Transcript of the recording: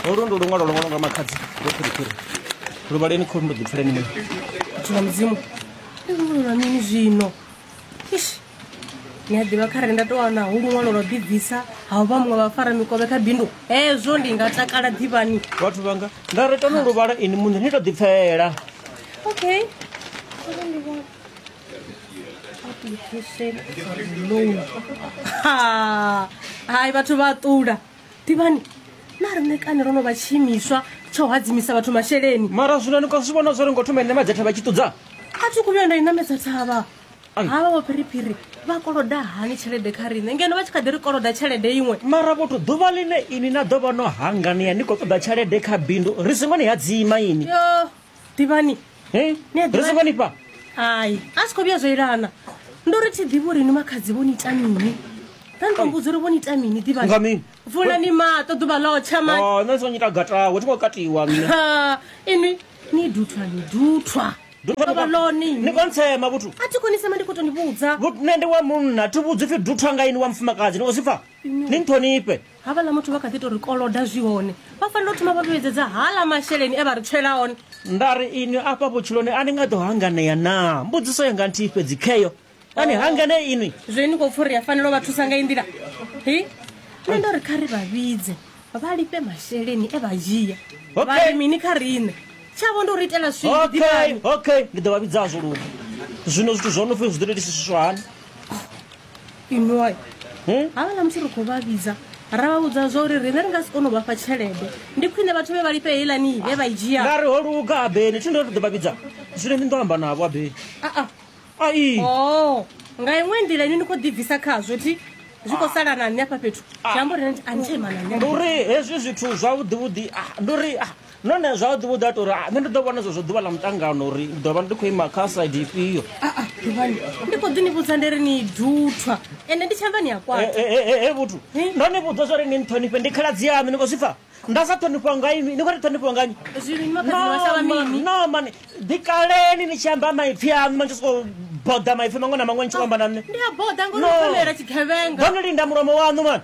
holu ndi luṅwalo lwo ṅwalwa nga makhadzi lwo phiriphiri lu vhaleni khou ndo ḓipfuleni mini tshina mudzimu ndi luṅwalolwa mini zwino ish ni a ḓivha kha re nda to wana hu luṅwalo lwa ḓibvisa ha u vha muṅwe vha fara mikovhe kha bindu hezwo ndi nga takala ḓivhani vhathu vhanga nda ri tano luvhala ini muṋe ni to ḓipfela okay Ha, hai vhathu vha ṱula ḓivhani na riṋe kani ro no vha tshiimiswa tsha u hadzimisa vhathu masheleni mara zwino ni khou zwi vhona zwo ri ngo thoma ine madzhetha vha tshi ṱudza a thi khou vhuya nda i namedza thavha Ai. havha vho phiriphiri vha koloda hani tshelede kha riṋe ngeno vha tshi kha ḓi ri koloda tshelede iṅwe mara vhothu ḓuvha ḽine ini na ḓo vha no hanganea ni khou ṱoḓa tshelede kha bindu ri songo ni hadzima ini yo ḓivhani Hey, Ni a ḓivha- ri songo ni fha hai a si khou vhuya zwo ilana ndo ri thi ḓivhi uri ni makhadzi vho ni ita mini vha ni to mbudza uri vho ni ita mini Nga ḓivhani mini? vulani maṱo ḓuvha ḽotsha mani Oh, nṋe ndi songo nyita gatawe thi ngo katiwa nṋe Ha, inwi ni duthwa ni duthwa ḓuvha ḽone ni kontsema vhuthu a thi konisema ndi khou to ni vhudza Vhu- nṋe ndi wa munna thi vhudzi pfi duthwa nga ini wa mufumakadzi ni khou zwi pfa ni nṱhonifhe havhaḽa muthu vha kha ḓi tou ri koloda zwi hone vha fanela u thoma vha vhuyedzedza hala masheleni e vha ri tswela one nda ri inwi afha vhutshiloni a ni nga ḓo hanganea naa mbudziso yanga nthihi fhedzi kheyo a ni hanganee inwi zwe ni khou pfha uri ya fanela u vha thusa nga i nḓila hi nṋe ndo ri kha ri vha vhidze vha lifhe masheleni e vha dzhia Okay. vha ri mini kha riṋe tshavho ndi u ri itela swii okay ḓivhani okay ndi ḓo vha vhidzazwo luka zwino zwithu zwo no pfhi zwi ḓo tou itisiswa hani fhindula hmm? havha na musi ri khou vha vhidza ra vha vhudza zwa uri riṋe ri nga si kone u vha fha tshelede ndi khwine vhathu vhe vha lifhe heilani vhe vha i dzhia nga ri ho luga abeni thi ndo ri ḓo vha vhidza zwine ndi ndo amba navho abeni aa ai o oh, nga iṅwe nḓila ini ni khou ḓibvisa khazwo thi zwi khou sala na nṋe afha fhethu zwi amba uri a ni tshaimana nṋe ndi uri hezwi zwithu zwavhuḓivhuḓi ah, ndi uri ah, Nahone zwavhuḓi vhuḓi a tou ri nṋe ndi ḓo vhona zwezwo ḓuvha ḽa muṱangano uri ndi ḓo vha ndi khou ima kha side ifhio ḓuvhani ndi khou ḓi ni vhudza ndi ri ni duthwa ende ndi tshanḓa ni a kwata he vhuthu ndo ni vhudza zwa uri ni nṱhonifhe ndi khaladzi yaṋu ni khou zwi pfa nda sa ṱhonifhiwa nga inwi ni khou ri ṱhonifhiwa nga nyi no mani ḓi kaleni ni tshi amba maipfhi aṋu manje sokou boda maipfhi maṅwe na maṅwe ni tshi khou amba na nṋe ndi a boda ngori no linda mulomo waṋu mani